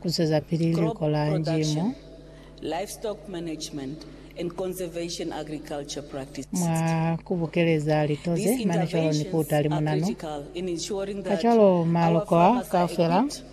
Ku zwezapili liko la Njimo. Mwa ku bukeleza lito ze mane cwalo ni ku uta limunanu, kacwalo maloko a kaufela a.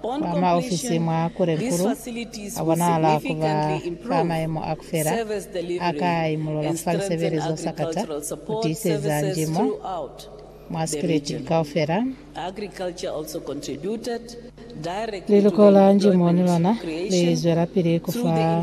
Kwa maofisi mwa Kurenkuru a bonahala ku ba fa mayemo a ku fela a ka imulola fa lisebele zo sakata ku tiiseza njimo mwa sikiliti kaufela. Liluko la njimo ni lona li zwelapili ku fa.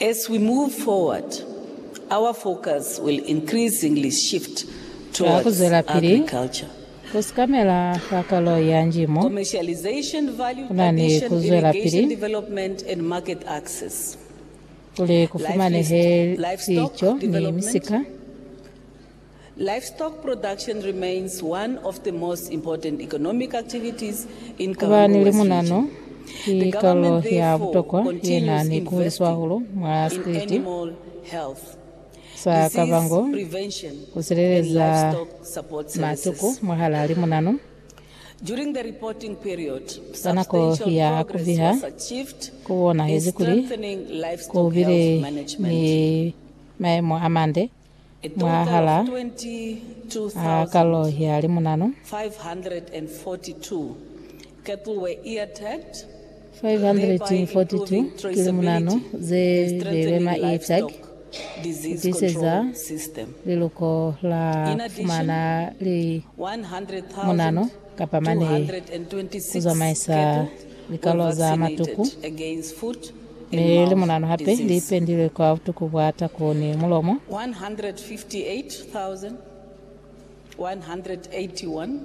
As we move forward, our focus will increasingly shift Ka ku towards zwelapili agriculture, ku sikamela ka kalo ya njimo, commercialization, value ku na ni ku addition, zwelapili irrigation development and market access, kuli ku fumanehe livestock sico ni development, misika. Livestock production remains one of the most important economic activities in Karongo West Region. Kuba ni limunano ki kalulo ya butokwa ye na ni ku huliswa hahulu mwa sikriti sa Kavango. Ku sileleza matuku mwahalaa limunano ka nako ya ku biha, ku bonahezi kuli ku bile ni maemo a mande. mwahal'a kalo ya limunanu 542 ki limunanu ze beilwe maitag ku tiseza liluko la kufumana limunanu kapa manei ku zamaisa likalo za matuku. Mi limunanu hape li pendilwe kwa butuku bwa taku ni mulomo. 158,181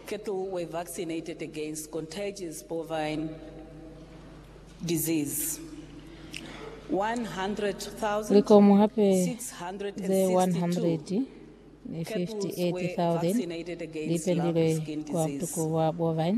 cattle were vaccinated against contagious bovine disease. 100,662 Likomu hape ze 158,000 cattle vaccinated li against pendilwe lump skin kwa disease. butuku bwa bovine.